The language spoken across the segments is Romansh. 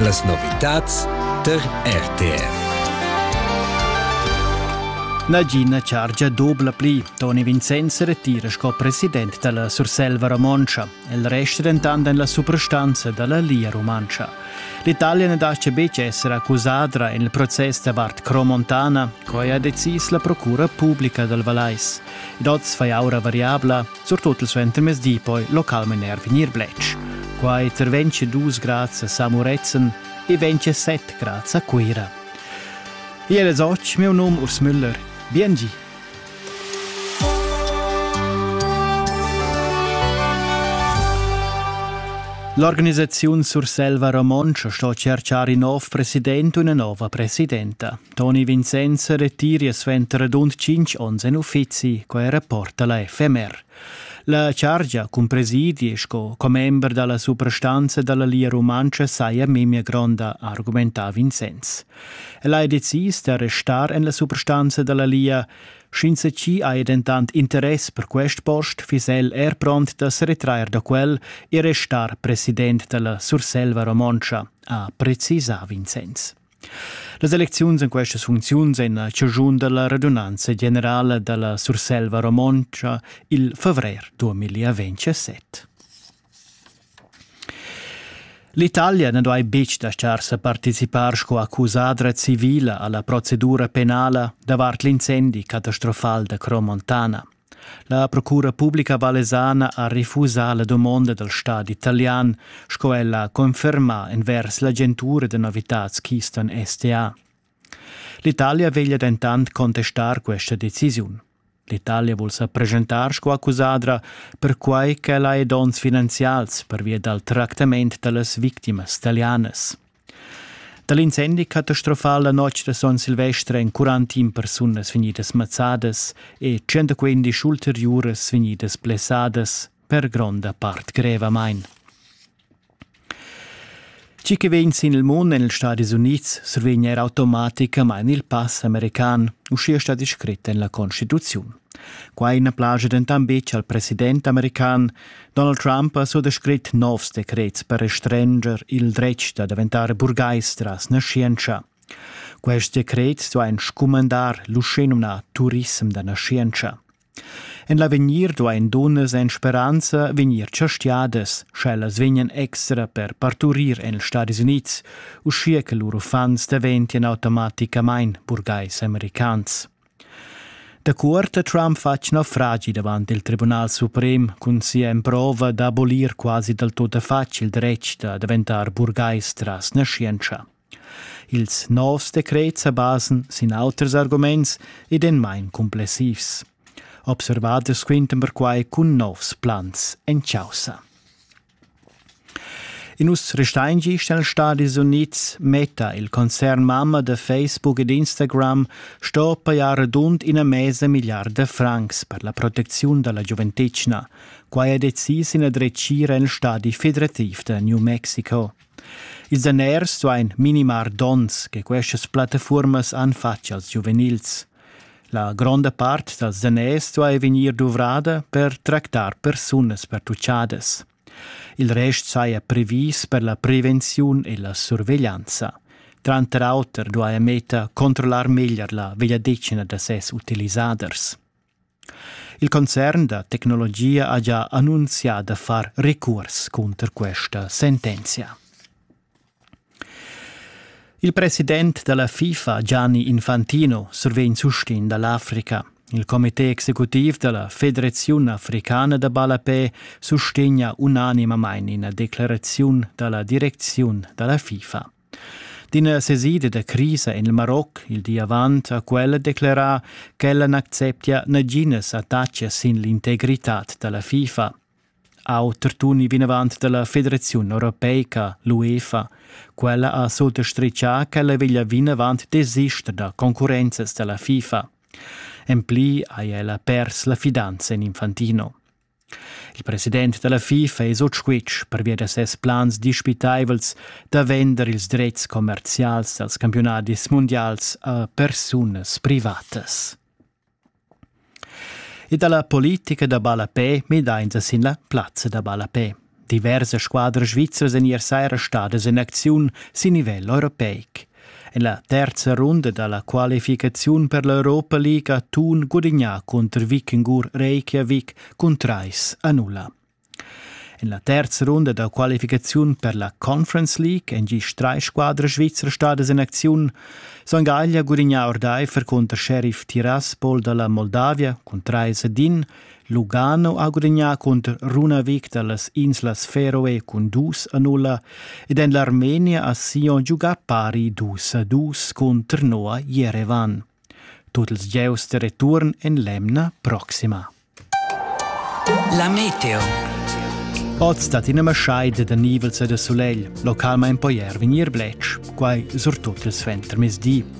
Las novitads tar RTR. Nagina chargia dubla pli. Toni Vincenz retira sco president dalla Surselva romontscha. El resta dentant en la suprastanza dalla Lia rumantscha. L'Italia ne lascia betg essere accusada en il proces davart Cromontana, quai ha decis la procura publica dal Valais. Ed oz fai aura variabla, surtut il suentermezdi poi localmain er vegnir bletsch. Quai terventsche dus grads a Samuretzen e ventsche set grads a Cuira. Iel es och, meu num Urs Müller. Biengi! L'organisaziun Surselva Romontscha sto cerchar in nov president u una nova presidenta. Toni Vincenz retira suenter radund tschintg onns en uffizi, quai rapporta la FMR. La chargia cun presidi sco commember dalla suprastanza dalla Lia Rumantscha saja memia gronda, argumenta Vincenz. El ha decis da restar en la suprastanza dalla Lia. Sch'ins ci ha dentant interess per quest post, fiss el er pront da se retrair da quel e restar president dalla Surselva Romontscha, ha precisà Vincenz. Las elecziuns en questas funcziuns en la ciugiun da la radunanza generala da la Surselva romontscha il favrer 2027. L'Italia na duai betg dastar sa participar sco accusadra civila a la procedura penala davart l'incendi catastrofal da Cromontana. La procura publica vallesana ha refusà la dumonda dal stadi italian, sco ella ha confermà envers l'agentura da novitads Keystone STA. L'Italia veglia dentant contestar questa decisiun. L'Italia vul sa presentar sco accusadra perquai ch'ella ha donns finanzials pervia dal tractament da las victimas talianas. Da l'incendi catastrofal la notg da Son Silvestre èn 41 persunas vegnidas mazzadas e 115 ulteriuras vegnidas blessadas, per gronda part grevamain. Tgi che vegn sin il mund en ils Stati Unids survegn er automaticamain il pass american, uschia sta descrit en la Constituziun. Quai na plaja dentant betg al president american, Donald Trump ha suttescrit novs decrets per restrenger il dretg da daventar burgais tras naschientscha. Quest decret sto ein scumandar l'uschenumna Turism da naschientscha. En l'avegnir do ein dunnas en speranza vegnir chastiadas, sch'ellas vegnan extra per parturir en ils Stati Unids, uschia che lur uffants daventien automaticamain burgais americans. Da cuort ha Trump fatg naufragi davant il Tribunal suprem cun sia emprova d'abolir quasi dal tuttafatg il dretg da daventar burgais tras naschientscha. Ils novs decrets sa basan sin auters arguments ed en main cumplessivs. Observaders quintan perquai cun novs plans en chaussa. In uss restain gist nels Stadis Unids metta il concern mamma da Facebook ed Instagram sto pajar radund ina mesa milliarda francs per la protecziun da la giuventetgna. Quai ha decis ina dretgira nel stadi federativ da New Mexico. Ils daners duain minimar dons che questas plattafuormas han fatg als giuvenils. La gronda part da zaners duai vegnir duvrada per tractar persunas pertuchadas. Il rest saja previs per la prevenziun e la surveglianza. Tranter auter duaja Meta controllar meglier la vegliadetgna da ses utilisaders. Il concern da tecnologia ha gia annunzià da far recurs cunter questa sentenzia. Il president della FIFA Gianni Infantino survegn sustegn dall'Africa. Il comité executiv della Federazione Africana da Ballapè sustegna unanimamain ina declarazione dalla direczione della FIFA. D'ina sesida da crisa en il Maroc il di avant ha quella declerà ch'ella n'acceptia naginas attacas sin l'integritad da la FIFA. Auter tuni vinavant da la Federaziun europeica, l'UEFA. Quella ha sottastritgà ch'ella veglia vinavant desister da concurrenzas da la FIFA. En pli ha ella pers la fidanza en Infantino. Il president da la FIFA es ot squitsch pervia da ses plans dispitaivels da vender ils drets commerzials dals campiunadis mundials a persunas privatas. E da la politica da ballapè midainsa sin la plazza da ballapè. Diversas squadras svizzras èn ier saira stadas en acziun sin nivel europeic. En la terza runda da la qualificaziun per l'Europa League ha Thun gudignà cunter Vikingur Reykjavik cun trais a nulla. En la terza runda da qualificaziun per la Conference League èn gist drei squadras svizras stadas en acziun. Son Gaglia gudignà ordaifer cunter Sheriff Tiraspol da la Moldavia cun trais ad in Lugano ha gudagnà cunter Runavik da las inslas Feroe cun dus a nulla ed en l'Armenia ha Sion giugà pari dus a dus cun Trnoa Jerevan. Tut ils gieus da return en l'emna proxima. La meteo. Oz dat ina maschaida da nivels e da sulegl, localmain poi er vegnir bletsch, quai surtut il suentermezdi.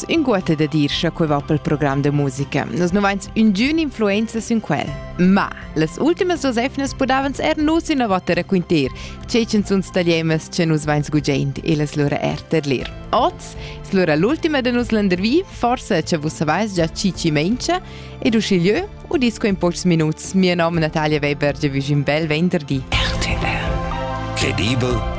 inguotta da dir cha quai va pel program da musica. Nus nu vains üngün influenza sün quel. Ma las ultimas duos efnas pudavans er nus innovatter raquinter, tge ch'en sun stagliemas che nus vains gugiaint e las lura er terlir. Oz es lura l'ultima da nus landervi, forsa cha vus savais già chi chi mengia, ed uschigliö udis quei in pochs minuts. Mia nom Natalia Weber, vi un bel venderdi. RTR. Credibel